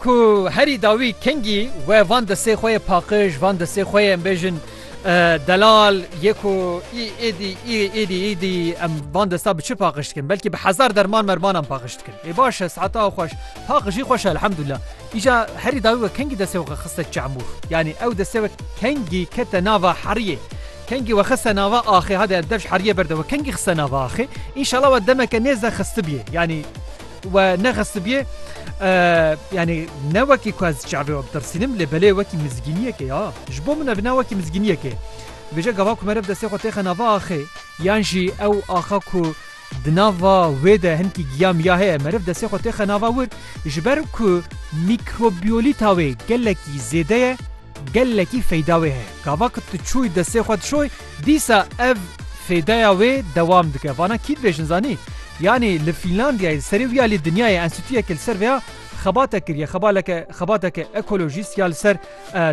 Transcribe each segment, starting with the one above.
Ku herî dawî kengî we van destê xwe yê paqij, van destê xwe yê em bêjin delal yê ku î êdî î êdî îdî em van desta bi çi paqij dikin? Belkî bi hezar derman mermanan paqij dikin. Ê baş e saeta xweş. Paqijî xweş e elhamdulillah. Îca herî dawî we kengî destê xwe xiste çemûr. Yanî ew destê we kengî kete nava heriyê. Kengî we xiste nava axê hade dev ji heriyê berde we kengî xiste nava axê. Înşala we demeke nêzde xistibiyê. Yanî We nexistibiyê yanî ne wekî ku ez çavê we bitirsînim lê belê wekî mizgîniyekê ya ji bo min ev ne wekî mizgîniyekê vêje gava ku merev destê xwe têxe nava axê yan jî ew axa ku di nava wê de hinkî giya miya heye meriv destê xwe têxe nava wir ji ber ku mîkrobiyolîta wê gelekî zêde ye Gelekî feyda wê heye. Gava ku tu çûyî destê xwe dişoy dîsa ev fêdaya wê dewam dike. Vana kî dibêjin zanî? Yanî li Fînlandiyayê di serê wî ya lê dinyayê enstîtuyekê li ser vêya xebatek kiriye. Xebaleke xebateke ekolojîst ya li ser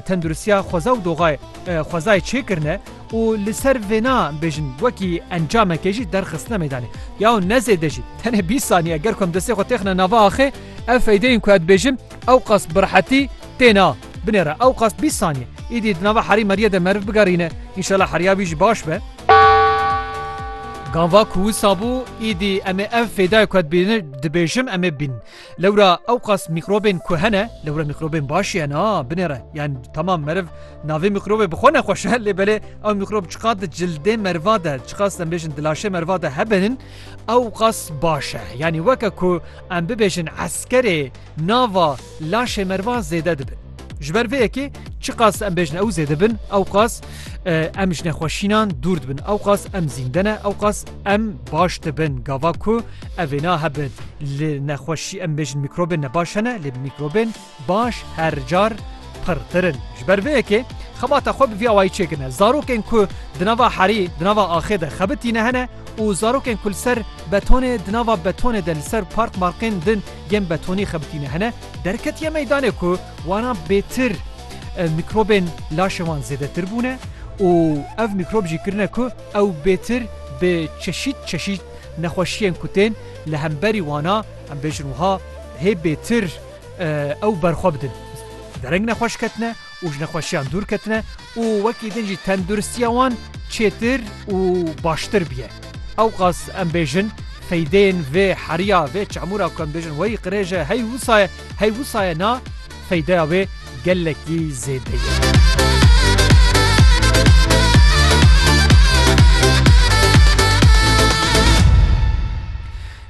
tenduristiya xweza û doxayê xwezayê çêkirine û li ser vêna bêjin wekî encamekê jî derxistine meydanê. Yaw ne zêde jî tenê bîst saniye ger ku em destê xwe têxine nava axê ev feydeyên ku ez dibêjim ewqas bi rehetî têne. Binêre ewqas bîst saniye. Îdî di nava herî merîye de meriv bigerîne. Înşela heriya wî jî baş be. Ganva ku wisa bû, îdî em ê ev fêdayê ku ez dibînim dibêjim em ê bînin. Lewra ewqas mîkrobên ku hene, lewra mîkrobên baş jî hene a, binêre. Yan temam meriv navê mîkrobê bi xwe nexweş e, lê belê ew mîkrob çiqas di cildê meriva de, çiqas em bêjin di laşê meriva de hebin, ewqas baş e. Yanî weke ku em bibêjin eskerê. Nava laşê merva zêde dibin. Ji ber vê yekê çiqas em bêjin ew zêde bin ewqas em ji nexweşînan dûr dibin ewqas em zînde ne ewqas em baş dibin gava ku evê nahebin li nexweşî em bêjin mîkrobên ne baş hene lê mîkrobên baş her car pirtirin ji ber vê yekê xebata xwe bi vî awayî çêkirine zarokên ku di nava herî di nava axê de xebitîne hene û zarokên ku li ser betonê di nava betonê de li ser park markên din yên betonî xebitîne hene derketiye meydanê ku waran bêtir mîkrobên laşê wan zêdetir bûne û ev mîkrob jî kirine ku ew bêtir bi çeşît çeşît nexweşiyên ku tên li hemberî wana em bêjin wiha hê bêtir ew berxwe bidin. Dereng nexweş ketine û ji nexweşiyan dûr ketine û wekî din jî tenduristiya wan çêtir û baştir bûye. Ewqas em bêjin feydeyên vê heriya, vê çamûra ku em bêjin wey qirêj e hey wisa ye, hey wisa ye na, feydeya wê gelekî zêde ye.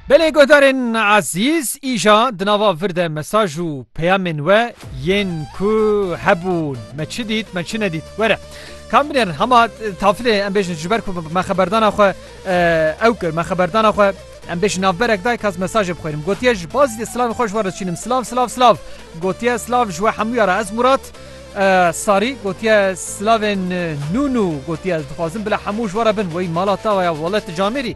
Belê guhdarên ezîz îja di nava vir de mesaj û peyamên we yên ku hebûn me çi dît me çi nedît were kam binêrin hema tafilê em bêjin ji ber ku me xeberdana xwe ew kir me xeberdana xwe em bêjin navberek dayk ez mesajê bixwênim gotiye ji baz dê silavên xwe ji we re diçînim silav silav silav gotiye silav ji we hemûya re ez Murat sarî gotiye silavên nû nû gotiye ez dixwazim bila hemû ji we re bin wey mala tawa ya welet camêrî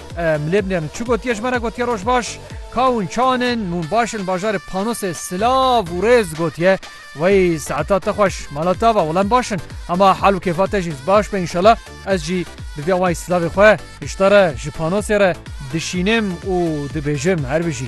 Milê milê min çi gotiye ji me re gotiye roj baş kaw in çan in mûn baş in bajarê panosê silav û rêz gotiye wey saeta te xweş mala te ava wala em baş in hema hal û kêfa te jî baş be înşela ez jî bi vî awayî silavê xwe hişta re ji panosê re dişînim û dibêjim herbijî.